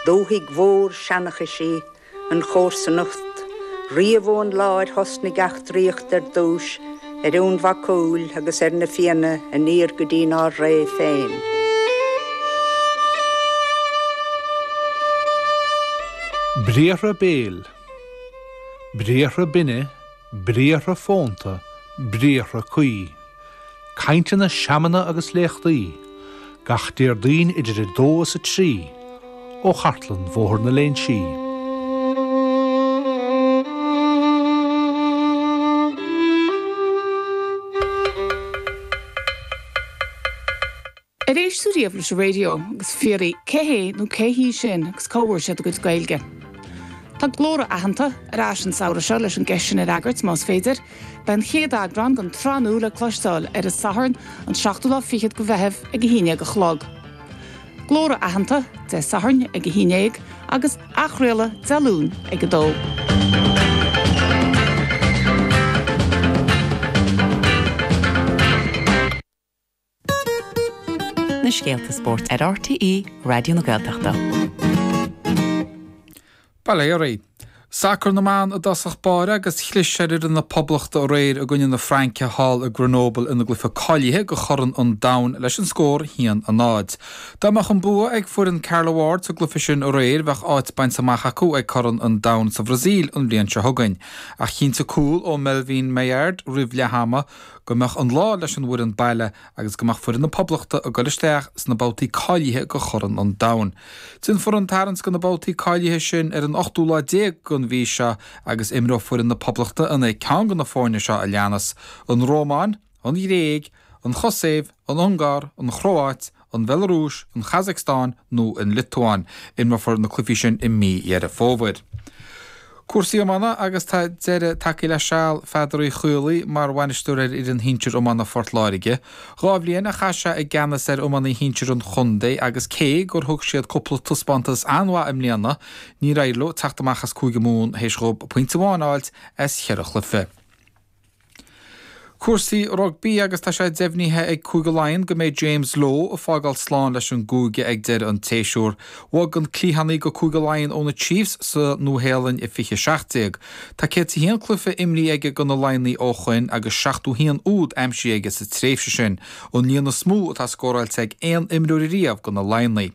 Dúthaigh mhór seanchais í an chomharsanacht riamh ón lá ar thosnaigh eachtraíocht ar dtúis ar Fhionn Mhac Cumhaill agus ar na Fianna aniar go dtínár ré féin. Briathra béil. Briathra binne. Briathra fónta, briathra caoine. Cainteanna, seamanna agus léachtaí, gach Déardaoin idir 2 is 3, ó Chartlann Bhóthar na Léinsí. Ar éist tú riamh leis an raidió? Agus fiafraí, cé hé nó cé hí sin agus cá bhfuair siad a gcuid Gaeilge? Tá Glórtha Aitheanta ar ais an samhradh seo leis an gceist sin a fhreagairt, más féidir. Beidh an chéad eagrán den tsraith nua le cloisteáil ar an Satharn an seachtú lá fichead de Mheitheamh ag a haon dhéag a chlog. Glórtha Aitheanta, Dé Sathairn ag a haon dhéag agus athchraoladh Dé Luain ag a dó. na scéalta spóirt ar RTÉ Raidió na Gaeltachta. Ba léir é. Sacar na mban i dtosach báire agus chlis ar fhoireann na Poblachta aréir i gcoinne na Fraince thall i Grenoble ina gcluiche cáilithe do Chorn an Domhain leis an scór 1 a 0. Dá mbeadh an bua ag foireann Carla Ward sa gcluiche sin aréir bheadh áit bainte amach acu ag Corn an Domhain sa Bhrasaíl an bhliain seo chugainn. Ach chinntigh cúl ó Melvine Malard roimh leath ama Go mbeadh an lá leis an bhfoireann baile agus go mbeadh foireann na Poblachta ag dul isteach sna babhtaí cáilithe do Chorn an Domhain. Déanfar an tarraingt do na babhtaí cáilithe sin ar an ochtú lá déag den mhí seo agus imreoidh foireann na Poblachta in aghaidh ceann de na foirne seo a leanas, An Rómáin, An Ghréig, An Chosaiv, An Ungáir, An Chróáit, an Bhelarúis, an Chazacstáin nó an Liotuáin. Imreofar na cluichí sin i mí Dheireadh Fómhair. Cúrsaí iomána agus tá deireadh tagtha le seal Pheadair Uí Chaollaí mar bhainisteoir ar fhoireann shinsir iomána Phort Láirge. Dhá bhliain a chaith sé i gceannas ar iománaithe shinsir an chontae agus cé gur thug siad cúpla taispeántas an-mhaith i mbliana, níor éirigh leo teacht amach as Cúige Mumhan théis dhóibh pointe amháin a fháilt as cheithre chluiche. Cúrsaí rugbaí agus tá sé deimhnithe ag Cúige Laighean go mbeidh James Lowe ag fágáil slán leis an gcúige ag deireadh an tséasúr. Bhog an cliathánaí go Cúige Laighean ó na Chiefs sa Nua-Shéalainn i 20 17. Tá 101 cluiche imrithe aige do na Laighnigh ó shoin agus 71 úd aimsithe aige sa tréimhse sin, an líon is mó atá scóráilte ag aon imreoir riamh do na Laighnigh.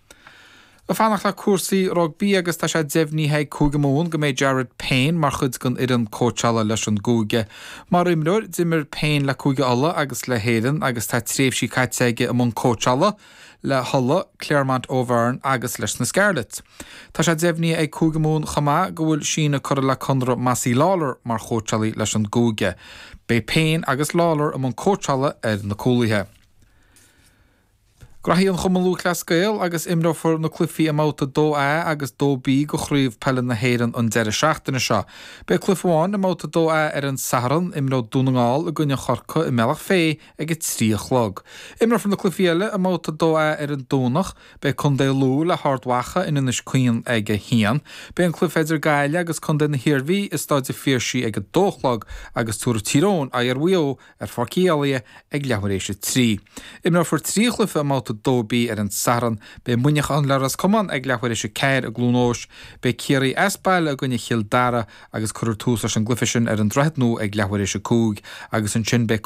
Ag fanacht le cúrsaí rugbaí agus tá sé deimhnithe ag Cúige Mumhan go mbeidh Jared Payne mar chuid den fhoireann cóitseála leis an gcúige. Mar imreoir, d'imir Payne le Cúige Uladh agus le hÉirinn agus tá tréimhsí caite aige i mbun cóitseála le hUladh, Clermont Auvergne agus leis na Scarlets. Tá sé deimhnithe ag Cúige Mumhan chomh maith go bhfuil síneadh curtha le conradh Mossy Lawler mar chóitseálaí leis an gcúige. Beidh Payne agus Lawler i mbun cóitseála ar na cúlaithe. Rachaidh muid chuig Cumann Lúthchleas Gael agus imreofar na cluichí i mbabhta 2A agus 2B de Chraobh Peile na hÉireann an deireadh seachtaine seo. Beidh cluiche amháin i mbabhta 2A ar an Satharn, imreoidh Dún na nGall i gcoinne Chorcaigh i mBealach Féith ag a trí a chlog. Imreofar na cluichí eile i mbabhta 2A ar an Domhnach. Beidh Contae Lú le hArd Mhacha in Inis Caoin ag a haon. Beidh an cluiche idir Gaillimh agus Contae na hIarmhí i Staid an Phiarsaigh ag a dó a chlog agus tabharfaidh Tír Eoghain aghaidh ar Mhaigh Eo ar Pháirc Uí Éilí ag leathuair tar éis a trí. Imreofar trí chluiche i mbabhta 2B ar an Satharn. Beidh Muineachán le Ros Comáin ag leathuair tar éis a ceathair i gCluain Eois. Beidh Ciarraí as baile i gcoinne Chill Dara agus cuirfear tús leis an gcluiche sin ar an Droichead Nua ag leathuair tar éis a cúig agus ansin beidh